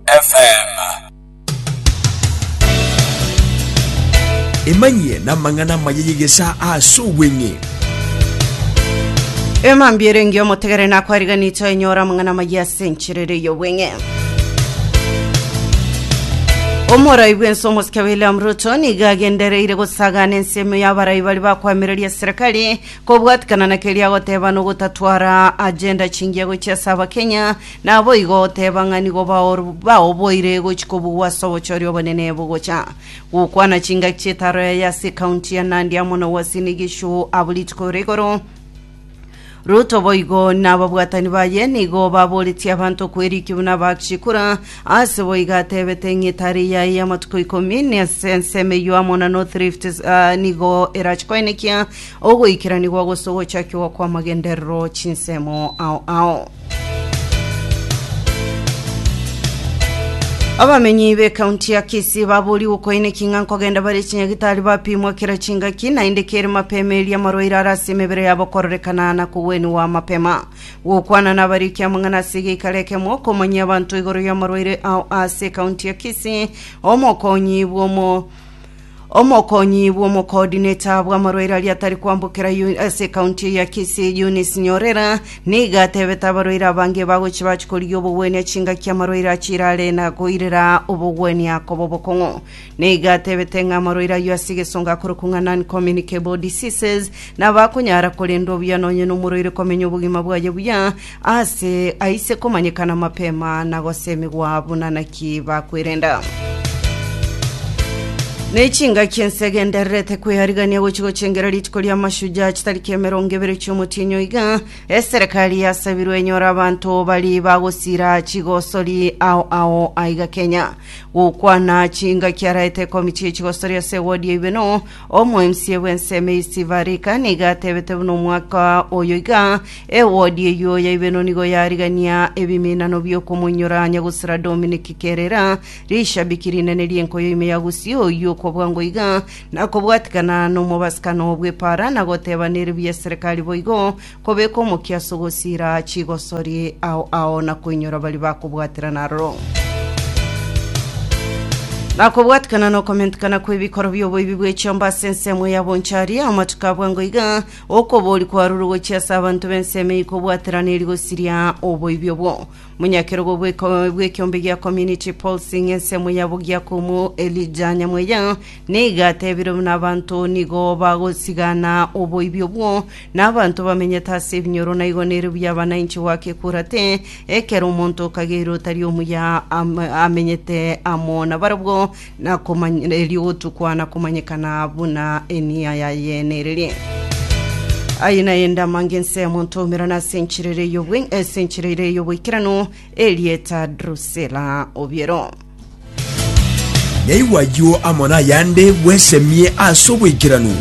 FM. Emanyie namang'ana amaya y'egesa ase obweng'e. emambiere engiya omotegere nakwariganito enyora amang'ana amaya ase encherere y'obweng'e omorai bwense omosike william ruto niga agendereire gosagana ensemo y'abarai bari bakwamireria serikali kobwatikana na keria agoteba nogotatwara agenda chingiya gochia ase abakenya Naboigo oteba ng'a nigo baoboire gochia kobugwa ase obochori obonene bogocha gokwana chingaki chitaro yaye ase ecounty ya Nandi amo na Uasin Gishu abwo rituko rigoro. Ruto boigo nababwatani baye nigo baboretie abanto kweriki buna Bakshi kura, ase boigo atebete ng'a etari yaye y'amatuko ikomi nase ensemo eyio amo na North Rift nigo erache koenekia Ogoikeranigwa gose ogochakigwa kw'amagenderero chinsemo ao ao. Abamenyi b'ekaunti ya Kisii baboorigwe koineki ng'a nkogenda bare chinyagitari bapimwa kera chingaki naende kere mapema erio amarwaire are ase emebere yabo kororekana na kogweniwa mapema. Gokwana nabariki amang'ana ase egeikaro ekemo komanyia abanto igoro y'amarwaire ao ase ekaunti ya Kisii, omokonyi bw'omo Omokonyi bw'omokoodineta bw'amarwaire aria atari kwambokera yu- ase ekaunti eye ya Kisii, Eunice Nyorera, nigo atebete abarwaire abange bagochi bache korigia obogwenia chingaki amarwaire achirare na koirera obogwenia koba obokong'u. Nigo atebete ng'a amarwaire ayio ase egesongo akorokwa ng'a non-communicable diseases, nabo akonyara korendwa buya nonye nomorwaire komenya obogima bwaye buya Aase aise komanyekana mapema na gosemigwa buna naki bakwerenda. Ne chingaki ense egendererete kwearigania gochi gochengera rituko ria Mashujaa chitariki emerongo ebere chiomotinyo iga, eserekari yasabirwe enyore abanto bari bagosira chigosori ao ao aiga Kenya. Gokwana chingaki araete ekomiti ye chigosori ase ewodi ya Ibeno, Omoemsie bw'ensemo eyio Steve Arika nigo atebete buna omwaka oyo iga ewodi eyio ya Ibeno nigo yarigania ebiminano bi'okomoinyora anya gosira Dominic Kerera, rishabiki rinene ri'enkoyo ime ya Gusii oyio okwa bwango iga nakobwatikana nomobasikano bw'epara na goteba nere buya serikali boigo Kobeka omokiaso gosiira chigosori ao ao na koinyora baria bakobwaterana aroro. Na kobwatikana na okomentikana kw'ebikoro bi'oboibi bw'echiomba ase ensemo ya bonchari, amatuko abwango iga okobori kwarure gochia ase abanto b'ensemo eyio kobwaterana eri gosiria oboibi obwo. Monyakerogo bw'ekiombe gia Community Pulsing ensemo ya Bogiakomu Elijah Nyamweya nigo atebirie buna abanto nigo bagosigana oboibi obwo Na abanto bamenyete ase ebinyoro naigo nere buya abananchi goaka ekurate, ekero omonto okageirwe otari omuya am- amenyete amo nabarabwo, nakomany- erio gotukwa na komanyekana buna enia yaye nererie. Aye naye ndamange ense omonto oumerana ase enchera ere y'obwe- ase enchera ere y'oboikeranu, erieta Drusela obiero. Naigwa ayio amo nayande bwesemie ase oboikeranu.